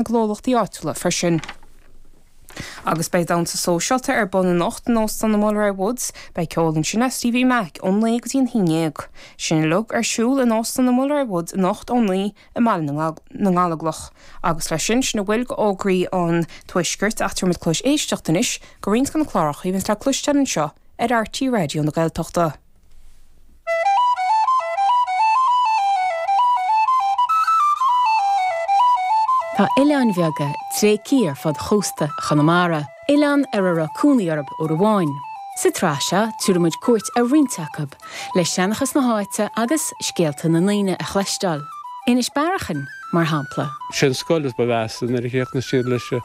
ngnólachtaí áitiúla freisin. Agus beidh damhsa sóisialta ar bun anocht in Óstán an Mulroy Woods. Beidh ceol ansin le Stevie Mac ón naoi go dtí an haon dhéag. Sin uilig ar siúl in Óstán an Mulroy Woods anocht ón naoi i mBaile na nGallóglach. Agus leis sin, sin a bhfuil d'fhógraí an Tuaiscirt ach tabharfaidh muid cluas éisteacht anois do roinnt de na cláracha a bheas le cloisteáil anseo ar RTÉ Raidió na Gaeltachta. Tá oileáin bheaga tréigthe ar fud chósta Chonamara, oileáin ar a raibh cónaí orthu uair amháin. Sa tsraith seo, tabharfaidh muid cuairt ar roinnt acub, le seanchas na háite agus scéalta na ndaoine a chloisteáil, Inis Bearachain, mar shampla. Sé'n scoil is ba mheasa nuair a chríochnaigh siad leis an.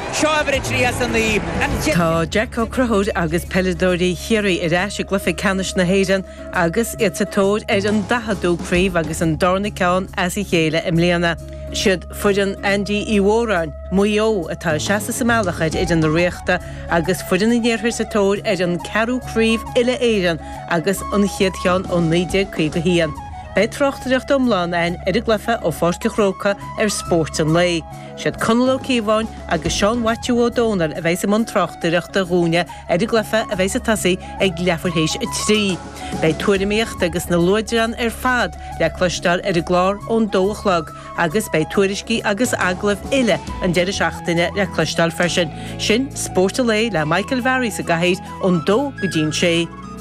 Seo uimhir a trí as a naoi. An. Tá Jack Ó Crothúir agus peileadóirí Chiarraí ar ais i gcluiche ceannais na hÉireann agus iad sa tóir ar an daicheadú craobh agus an darna ceann as a chéile i mbliana. Siad foireann Andy Uí Mhóráin, Maigh Eo, atá ag seasamh sa mbealach ar fhoireann na Ríochta agus foireann an iarthair sa tóir ar an gceathrú craobh uile-Éireann agus a gcéad cheann ó 1951. Beidh tráchtaireacht iomlán ann ar an gcluiche ó Pháirc an Chrócaigh ar Spórt an Lae. Siad Conall Ó Cíobháin agus Seán Mhaitiú Ó Dónaill a bheidheas i mbun tráchtaireachta dhúinne ar an gcluiche a bheidheas ag tosaí ag leathuair théis a trí. Beidh tuairimíocht agus na luaidreáin ar fad le cloisteáil ar an gclár ón dó a chlog agus beidh tuairiscí agus agallaimh uile an deireadh seachtaine le cloisteáil freisin. Sin Spórt an Lae le Michael Varry sa gcathaoir ón dó go dtí an sé.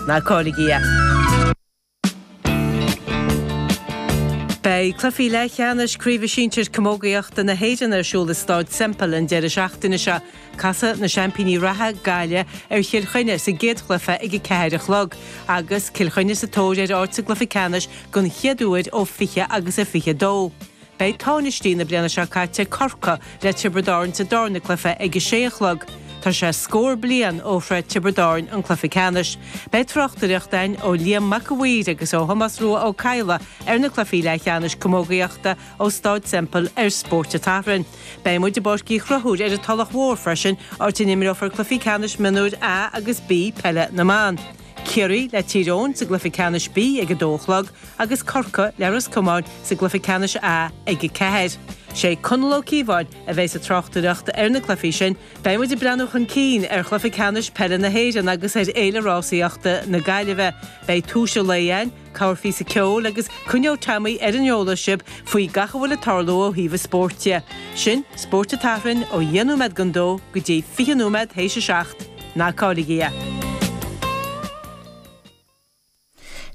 Ná cailligí é. Beidh cluichí leathcheannais Craoibhe Sinsir Camógaíochta na hÉireann ar siúl i Stáid Semple an deireadh seachtaine seo. Casfaidh na seaimpíní reatha, Gaillimh, ar Chill Chainnigh sa gcéad chluiche ag a ceathair a chlog, agus Cill Chainnigh sa tóir ar áit sa gcluiche ceannais den chéad uair ó fiche agus a fiche dó. Beidh tánaistí na bliana seo caite, Corcaigh le Tiobraid Árann sa darna cluife ag a sé a chlog. Tá sé scór bliain ó shroich Tiobraid Árann an cluife ceannais. Beidh tráchtaireacht againn ó Liam Mac an Mhaoir agus ó Thomás Rua Ó Cadhla ar na cluifí leath cheannais camógaíochta ó Stáid Semple ar Spórt an tSathairn. Beidh muid i bPáirc Uí Chonchúir ar an Tulach Mhór freisin áit a n-imreofar cluifí ceannais Mionúir A agus B peile na mban. Ciarraí le Tír Eoghain sa gcluiche ceannais B ag a dó a chlog agus Corcaigh le Ros Comáin sa gcluiche ceannais A ag a ceathair. Sé Conall Ó Cíobháin a bheidheas ag tráchtaireacht ar na cluichí sin. Beidh muid ag breathnú chun cinn ar chluiche ceannais peile na hÉireann agus ar Fhéile Rásaíochta na Gaillimhe. Beidh Turas an Lae ann. Casfar píosa ceoil agus coinneoidh Teaimí ar an eolas sibh faoi gach a bhfuil ag tarlú ó thaobh an spóirt de. Sin Spórt an tSathairn ó dheich nóiméad don dó go dtí fiche nóiméad théis a seacht. Ná cailligí é.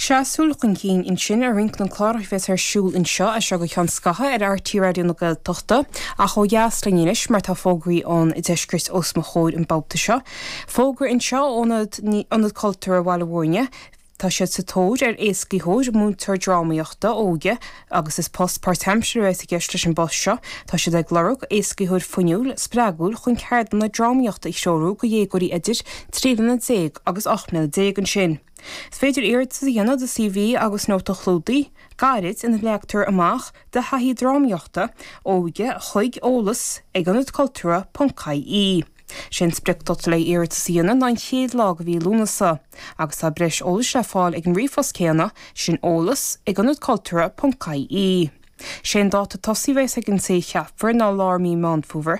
Sin súil chun cinn ansin ar roinnt de na cláracha a bheas ar siúl anseo as seo go ceann scaithe ar RTÉ Raidió na Gaeltachta ach ó dheas linn anois mar tá fógraí ón deisceart os mo chomhair an babhta seo. Fógra anseo ó Ionad Cultúrtha Bhaile Mhúirne. Tá siad sa tóir ar éascaitheoir, múinteoir drámaíochta óige, agus is post páirtaimseartha a bheas i gceist leis an bpost seo. Tá siad ag lorg éascaitheoir fuinniúil, spreagúil chun ceardlanna drámaíochta a threorú do dhéagóirí idir trí bliana déag agus ocht mbliana déag. Ansin is féidir iarratas a dhéanamh do CV agus nóta clúdaigh gairid ina leagtar amach do thaithí drámaíochta óige chuig eolas ag ionad cultúrtha ponc ie. Sé an spriocdháta le d'iarratas a dhéanamh ná an chéad lá de mhí Lúnasa, agus tá breis eolais le fáil ag an ríomhphost céanna, sin eolas, ag ionad cultúrtha ponc ie. Sé an dáta tosaigh a bheas ag an té a cheapfar ná lár mí Meán Fómhair,